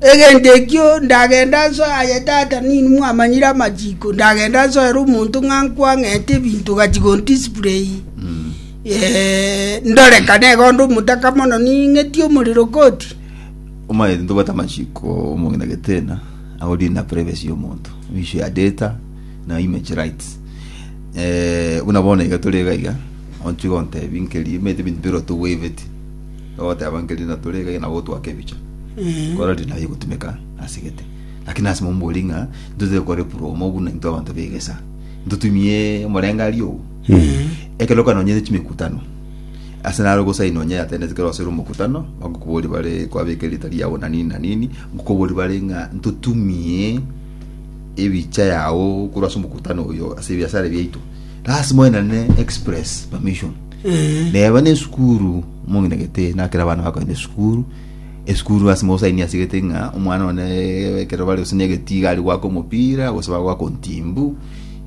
Egento ekio ndagende nsoe aye Tata ninwe mwamanyire amachiko, ndagende nsoere omonto ng'a nkwang'ete ebinto ogachia gondisplay ndore kane iga onde omotaka mono ning'etie omorero koti. Omanyete ntobwate amachiko omong'ina getena abo deal na privacy ya omonto we issue ya data na image rights eh, buna bono iga tore iga iga ontiga ontebi nkeria omanyete ebinto bire otowaveti Ogoteba nkeria natore iga nabo otwake ebicha. Eh. Kora ri naye gotumeka asegete. Lakini ase mombori ng'a ntotete kore promo buna into abanto begesa. Ntotumie omorenga aria ogo. Ekero kanonyene chimekutano. Ase naro gosaini onye attendance kero ase omokutano bagokobori bare kwabeka erita riao na nini na nini ngokobori bare ng'a ntotumie ebicha yao korwa ase omokutano oyo ase ebiasara biaito. Lasima oenane express permission. Neba nesukuru mominagete na kera abana bakoenda esukuru esukuru ase mosaini asigete ng'a omwana one eh, ekero bare gose negetiga ari gwaka omopira gose bagwaka ontimbu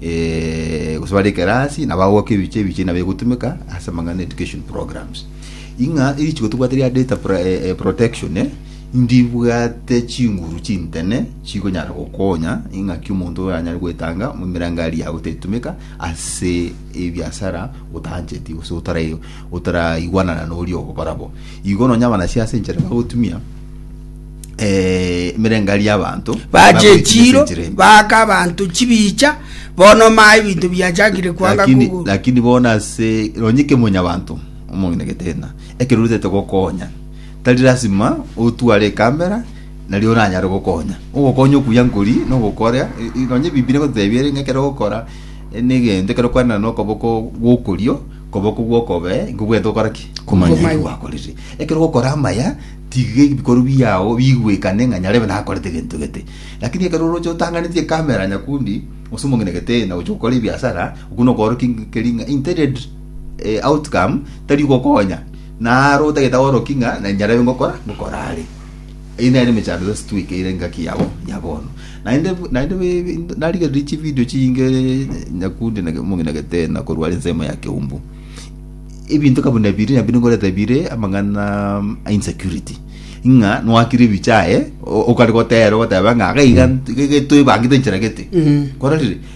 eh, gose bare ekerasi na bagwaka ebiche ebiche na begotumeka ase amang'ana education programs ing'a erichiko tobwate ria data pro- eh, eh, protection eh, ndibwate chinguru chintene chikonyara gokonya ing'aki omonto oyo anyare goetanga mu mirangari yago tetumeka ase ebiasara otaancheti gose otara- otaraigwanana noria ogokora bo igo nonya abanasi ase enchera bagotumia eh, emerengari y'abanto bagoetumia ase bachechiro enchera embe. baaka abanto chibicha bono maa ebinto biachakire kwanga lakini, kugu lakini bona ase nonya kemonyabanto omong'ina getena ekero orutete gokonya tari lasima otware ekamera nario oranyare gokonya. Ogokonya okuya nkori nogokora nonya Ebibilia egototebia ere ng'a ekero ogokora negento ekero okwanera nokoboko gwokorio koboko gwokobe nkobwete gokora ki Komanya. Komanya eki gwakorire ekero ogokora amaya tiga ebikorwa biao bigwekane ng'a nyarebe nakorete egento gete lakini ekero oroche otanganeti ekamera nyakundi gose omong'ina egetena gocha gokora ebiasara okwo nokoorokia nkeri ng'a intended eh, outcome tari gokonya naro otagete aorokie ng'a na nyarebe ngokora ngokora are. Eye nere emechando yonsi twekeire engaki yabo ya bono. Naende naende be- narigereria chi video chiinge nyakundi na omong'ina gete na korwara ensemo ya keumbu. Ebinto kabu na biri nabire ngorete bire amang'ana mm, a insecurity. Ng'a nwakire ebichaye o- okare gotera ogoteba ng'a gaiga nt- gege toebangete enchera gete. Kororire?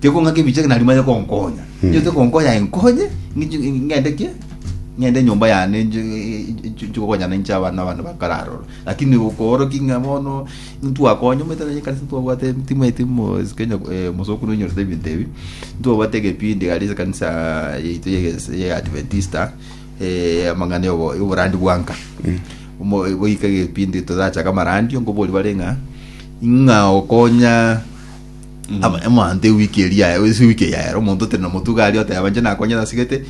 Tekong'aka ebichake na rimo aye konkonya. Inche tekonkonya aye nkonye ng'inche- ng'ende ki? Ng'ende enyomba yane nche- nche- nche gokonyana inche abana abana bakare aroro. Lakini okoorokia ng'a bono ntwakonye omanyete na ekanisa twabwate timanyeti mo- is- Kenya eh, mosokoro oinyorete ebinto ebi. Ntwabwate egepindi gare ase ekanisa yaito ya ege- ya Adventista eh, amang'ana ya obo- ya oborandi bwa nka. Omo- goika egepindi torachake amarandio nkoboria bare ng'a ng'a okonya Ama- emanto ewiki eria yaye ase ewiki eyi yaye omonto tene nomotuga aria oteba inche nakonyete asegete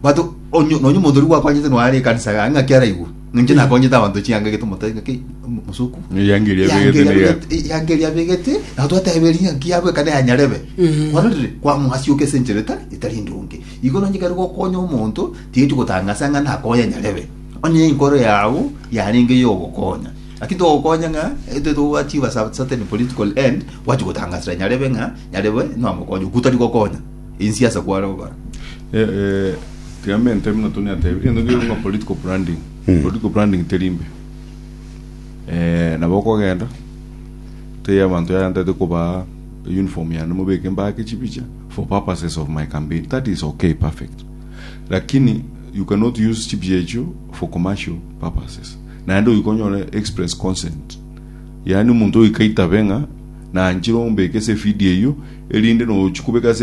but onye- nonye omonto oria gwakonyete noyo are ekanisa yaye ng'aki araigwe inche nakonyete abanto ching'anga egete omotebe ng'aki mosoku Eyangeri abegete na eyaku. yangeri abegete na twateberia ng'aki yabweka na yanyarebe Mhm. ororire kwamwasioka ase enchera etari etari endonge igo nonye kere gokonya omonto tigeti gotangasa ng'a nakonya nyarebe onye enkoro yao yarenge yogokonya Naki togokonya ng'a intwe togokora chibasa at certain political end, gwachia gotangasera nyarebe ng'a nyarebe nonya mokonye okwo tari gokonya insi ase kware gokora. Eh, eh, Clemente buna Tony atebire, egento keria ng'a political branding. Political branding teri mbe. Eh, nabo okogenda, otebie abanto yaya ntaete kobaa uniform yane mobeke mbake chibicha for purposes of my campaign. That is okay, perfect. Lakini you cannot use chibicha echio for commercial purposes. Naende ogoika onyore express consent, yaani omonto ogoika aitabe ng'a nanchire ombeke ase efidio eyio, erinde nogochia kobeka ase